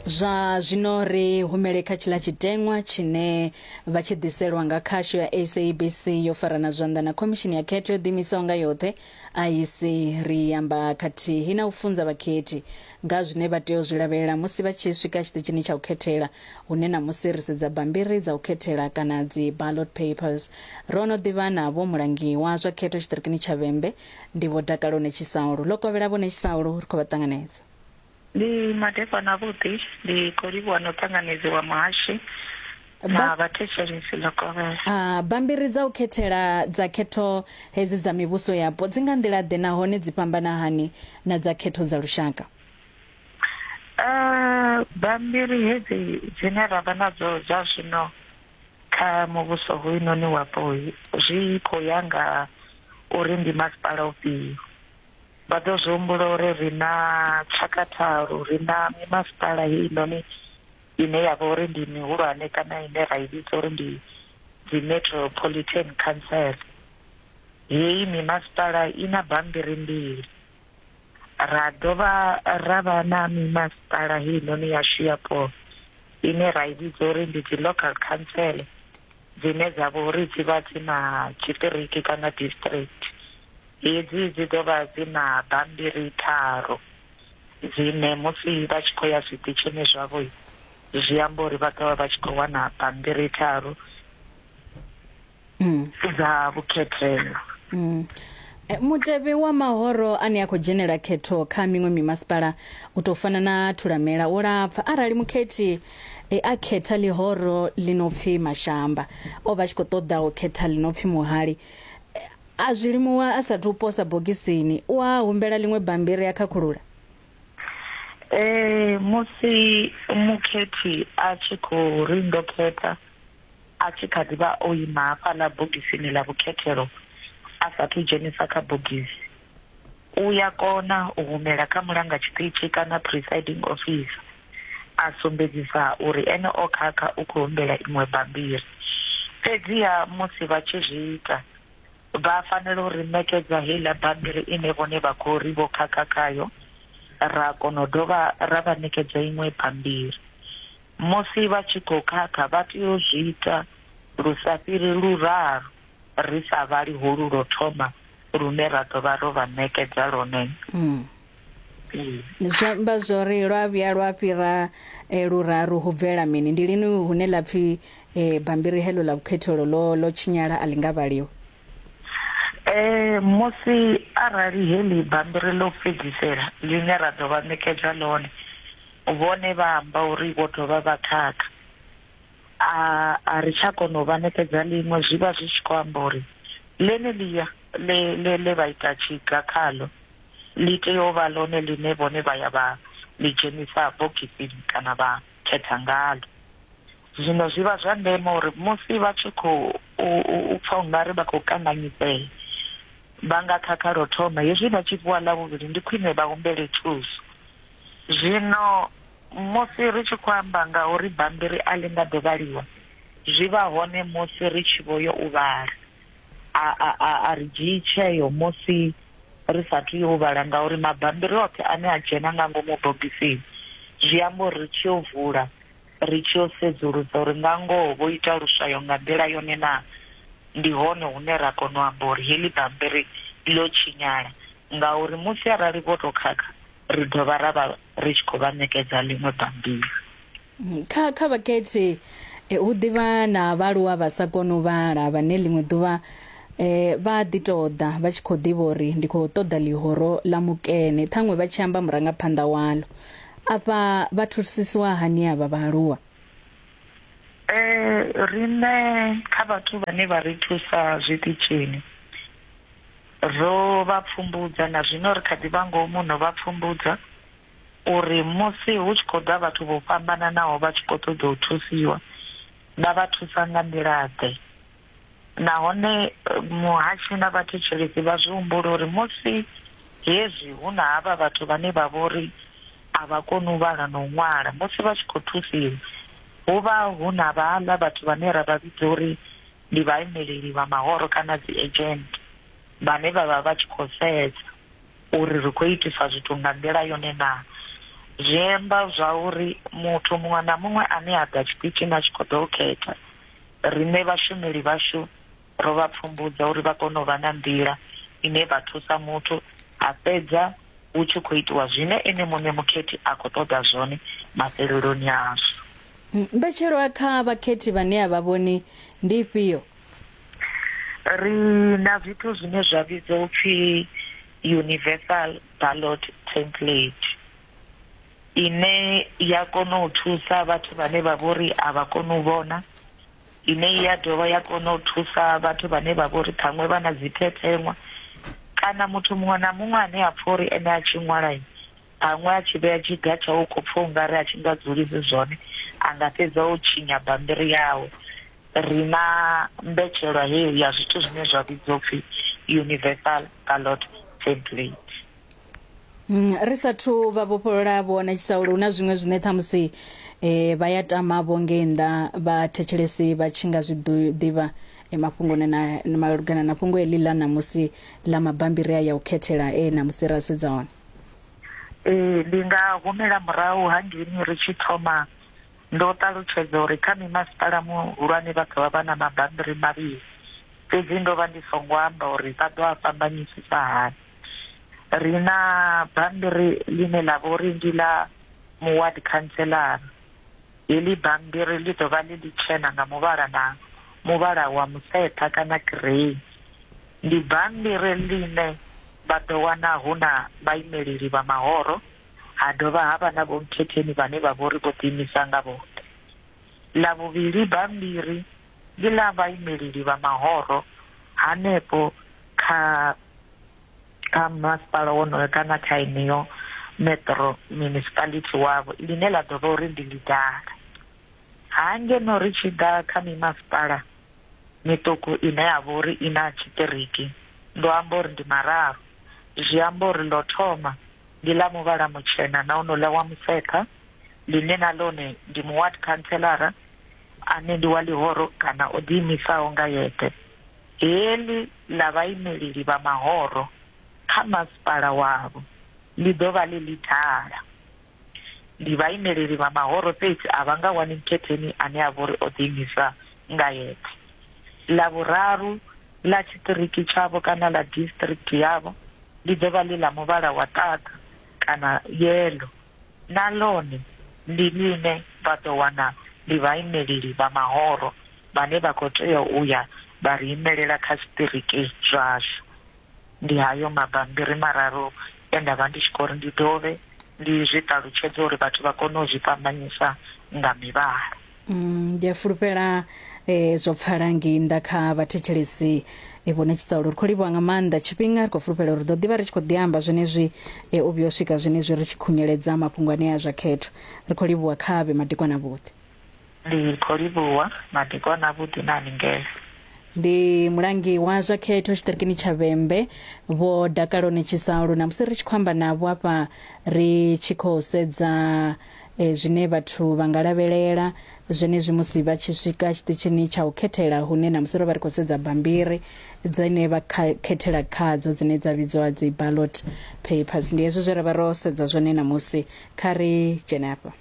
Zwa zwino ri humele kha tshiḽa tshiteṅwa tshine vha tshi ḓiselwa nga khasho ya SABC yo farana zwanḓa na Khomishini ya Khetho yo Ḓiimisaho nga Yoṱhe, IEC. Ri amba khathihi na u funza vhakhethi nga ha zwine vha tea u zwi lavhelela musi vha tshi swika tshiṱitshini tsha u khethela, hune ṋamusi ri sedza bammbiri dza u khethela kana dzi-ballot papers. Ro no ḓivha na Vho Mulangiwa zwa Khetho Tshiṱirikini tsha Vhembe, ndi Vho Dakalo Netshisaulu. Ḽo kovhela Vho Netshisaulu, ri khou vha ṱanganedza. ndi madekwana avhuḓi ndi khou livhuwa na u ṱanganedziwa muhashi na vhathetshelesi ḽo kovhela a ah, bambiri dza u khethela dza khetho hedzi dza mivhuso yapo dzi nga nḓila ḓe nahone dzi fhambana hani na dza khetho dza lushaka a ah, bambiri hedzi dzine ra vha nadzo zwa zwino kha muvhuso hoyunoni wapo zwi khou ya nga uri ndi masipala ufhio Vha ḓo zwi humbula uri ri na tshaka tharu, ri na mimasipala heinoni ine ya vha uri ndi mihulwane kana ine ra i vhidza uri ndi dzi Metropolitan Council. Heyi mimasipala i na bammbiri mbili, ra dovha ra vha na mimasipala heinoni yashu yapo ine ra i vhidza uri ndi dzi Local Council. dzine dza vha uri dzi vha dzi na tshiṱiriki kana district. Hedzi dzi ḓo vha dzi na bammbiri tharu dzine musi vha tshi khou ya zwiṱitshini zwavho zwi amba uri vha ḓo vha vha tshi khou wana bammbiri tharu mm. dza vhukhethelo. Mm. Eh, mutevhe wa mahoro ane a khou dzhenela khetho kha miṅwe mimasipala u tou fana na thulamela wo lapfa arali mukhethi E a khetha ḽihoro ḽi no pfi Mashamba. O vha tshi khou ṱoḓa u khetha ḽi no pfi Muhali. A zwi limuwa a sathu u posa bogisini, u a humbela ḽiṅwe bammbiri a khakhulula. Ee, musi mukhethi a tshi khou ri ndo khetha, a tshi kha ḓi vha o ima hafhaḽa bogisini ḽa vhukhethelo a sathu dzhenisa kha bogisi, u ya kona u humela kha mulanga tshiṱitshi kana presiding officer a sumbedzisa uri ene o khakha u khou humbela iṅwe bammbiri. Fhedziha musi vha tshi zwi ita, vha fanela u ri ṋekedza heiḽa bammbiri ine vhone vha khou ri vho khakha khayo, ra kona u dovha ra vha ṋekedza iṅwe bammbiri. Musi vha tshi khou khakha vha tea u zwi ita lu sa fhiri luraru. ri sa vhali holu lwo thoma lune ra ḓo vha ro vha ṋekedza lwone. Mm. Zwi amba zwo ri lwa vhuya lwa fhira eh, luraru hu bvela mini ndi lini hune ḽa pfhi eh, bambiri heḽo ḽa vhukhethelo ḽo ḽo tshinyala a ḽi nga vhaliwa Eh musi arali heḽi bambiri ḽo fhedzisela ḽine ra ḓo vha ṋekedza ḽone vhone vha amba uri vho dovha vha khakha a a ri tsha kona u vha ṋekedza ḽiṅwe zwi vha zwi tshi khou amba uri ḽeneḽia ḽe ḽe ḽe vha ita tshiga khaḽo ḽi tea u vha ḽone ḽine vhone vha ya vha ḽi dzhenisa bogisini kana vha khetha ngalo zwino zwi vha zwa ndeme uri musi vha tshi khou u pfha ungari vha khou kanganyisea vha nga khakha lwo thoma hezwi vha tshi fhiwa ḽa vhuvhili ndi khwine vha humbele thuso. Zwino musi ri tshi khou amba nga uri bammbiri a ḽi nga ḓo vhaliwa, zwi vha hone musi ri tshi vho yo u vhala. A, a, a, a ri dzhii tsheo musi ri sa athu yo u vhala ngauri mabammbiri oṱhe ane a dzhena nga ngomu bogisini zwi amba uri ri tshi yo vula ri tshi yo sedzulusa uri nga ngoho vho ita luswayo nga nḓila yone naa, ndi hone hune ra kona u amba uri heḽi bammbiri ḽo tshinyala. Ngauri musi arali vho tou khakha, ri dovha ra vha ri tshi khou vha ṋekedza ḽiṅwe bammbiri. Kha, kha vhakhethi hu ḓi vha na vhaaluwa vha sa koni u vhala vhane ḽiṅwe ḓuvha vha a ḓi tou ḓa vha tshi khou ḓivha uri ndi khou ṱoḓa ḽihoro ḽa mukene, ṱhaṅwe vha tshi amba murangaphanḓa waḽo. Afha vha thusisiwa hani avha vhaaluwa? Eh, riṋe kha vhathu vhane vha ri thusa zwiṱitshini ro vha pfumbudza na zwino ri kha ḓi vha ngomu no vha pfumbudza uri musi hu tshi khou ḓa vhathu vho fhambananaho vha tshi khou ṱoḓa u thusiwa vha vha thusa nga nḓila ḓe. nahone muhashi na vhathetshelesi vha zwi humbula uri musi hezwi hu na havha vhathu vhane vha vhori a vha koni u vhala na u ṅwala musi vha tshi khou thusiwa hu vha hu na vhaḽa vhathu vhane ra vha vhidza uri ndi vhaimeleli vha mahoro kana dzi agent vhane vha vha vha tshi khou sedza uri ri khou itisa zwithu nga nḓila yone na zwi amba zwa uri muthu muṅwe na muṅwe ane a ḓa tshiṱitshini a tshi khou ḓo u khetha Riṋe vhashumeli vhashu ro vha pfumbudza uri vha kone u vha na nḓila ine vha thusa muthu a fhedza hu tshi khou itiwa zwine ene muṋe mukhethi a khou ṱoḓa zwone mafheleloni azwo. Mbetshelwa kha vhakhethi vhane a vha vhoni ndi ifhio? Ri na zwithu zwine zwa vhidzwa u pfi Universal Ballot Template. ine ya kona u thusa vhathu vhane vha vhori a vha koni u vhona ine ya dovha ya kona u thusa vhathu vhane vha vhori ṱhaṅwe vha na dzi thethenwa kana muthu muṅwe na muṅwe ane a pfha uri ene a tshi ṅwala ṱhaṅwe a tshi vhea tshiga tsha u khou pfha ungari a tshi nga dzulisi zwone a nga fhedza o tshinya bambiri yawe ri na mbetshelwa heyo ya zwithu zwine zwa vhidzwa upfhi universal ballot template Mm, ri sathu vha vhofholola vho wanetshisa uri hu na zwiṅwe zwine ṱhamusi um vha ya tama vho ngei nnḓa vha thetshelesi vha tshi nga zwi ḓivha eh, mafhungoni na malugana na fhungo heḽi ḽa ṋamusi ḽa mabambiri a ya u khethela e ṋamusi ra sedza hone ee ndi nga humela murahu hangeini ri tshi thoma ndo ṱalutshedza uri kha mimasipala muhulwane vha ḓovha vha na mabambiri mavhili fhedzi ndo vha ndi songo amba uri vha ḓo a fhambanyisisa hani ri na bammbiri ḽine ḽa vha uri ndi ḽa muward councilor heḽi bammbiri ḽi ḓo vha ḽi ḽitshena nga muvhala na muvhala wa museṱha kana grey ndi bammbiri ḽine vha ḓo wana hu na vhaimeleli vha mahoro ha dovha ha vha na vhomkhetheni vhane vha vha uri vho ḓiimisa nga vhoṱhe ḽa vhuvhili bammbiri ndi ḽa vhaimeleli vha mahoro hanefho kha kha masipala wonoyo kana kha yeneyo metro municipality wavho ḽine ḽa ḓo vha uri ndi ḽidala. Ha ngeno ri tshi ḓa kha mimasipala miṱuku ine ya vha uri i na tshiṱiriki, ndo amba uri ndi mararu, zwi amba uri ḽo thoma ndi ḽa muvhala mutshena na honouḽa wa musekha ḽine na ḽone ndi muward khantseḽara, ane ndi wa ḽihoro kana o ḓiimisaho nga yeṱhe, heḽi ḽa vhaimeleli vha mahoro kha masipala wavho ḽi ḓo vha ḽi ḽithala. Ndi vhaimeleli vha mahoro fhedzi a vha nga wani mukhetheni ane a vha uri o ḓiimisa nga yeṱhe. Ḽa vhuraru ḽa tshiṱiriki tshavho kana ḽa district yavho ḽi ḓo vha ḽi ḽa muvhala wa ṱaḓa kana yellow. Na ḽone ndi ḽine vha ḓo wana ndi vhaimeleli vha mahoro vhane vha khou tea u ya vha ri imelela kha zwiṱiriki zwashu. Ndi hayo mabammbiri mararu e nda vha ndi tshi khou ri ndi dovhe ndi zwi ṱalutshedze uri vhathu vha kone u zwi fhambanyisa nga mivhala. Mm, ndi a fulufhela eh, zwo pfala ngei nnḓa kha vhathetshelesi eh, vho netshisa uri ri khou livhuwa nga maanḓa tshifhinga ri khou fulufhela uri ri ḓo ḓivha ri tshi khou ḓiamba zwenezwi eh, u vhuya u swika zwenezwi ri tshi khunyeledza mafhungo anea a zwa khetho ri khou livhuwa kha vhe madekwana vhuḓi Ndi khou livhuwa madekwana vhuḓi na haningele. ndi mulangi wa zwa khetho tshiṱirikini tsha vhembe vho dakalo netshisa lu na musi ri tshi khou amba navho afha ri tshi khou sedza E, zwine vhathu vha nga lavhelela zwenezwi musi vha tshi swika tshiṱitshini tsha u khethela hune namusi ro vha ri khou sedza bambiri dzine vha khethela khadzo dzine dza vhidzwa dzi ballot papers ndi hezwi zwe ra vha ro sedza zwone namusi kha ri dzhene afha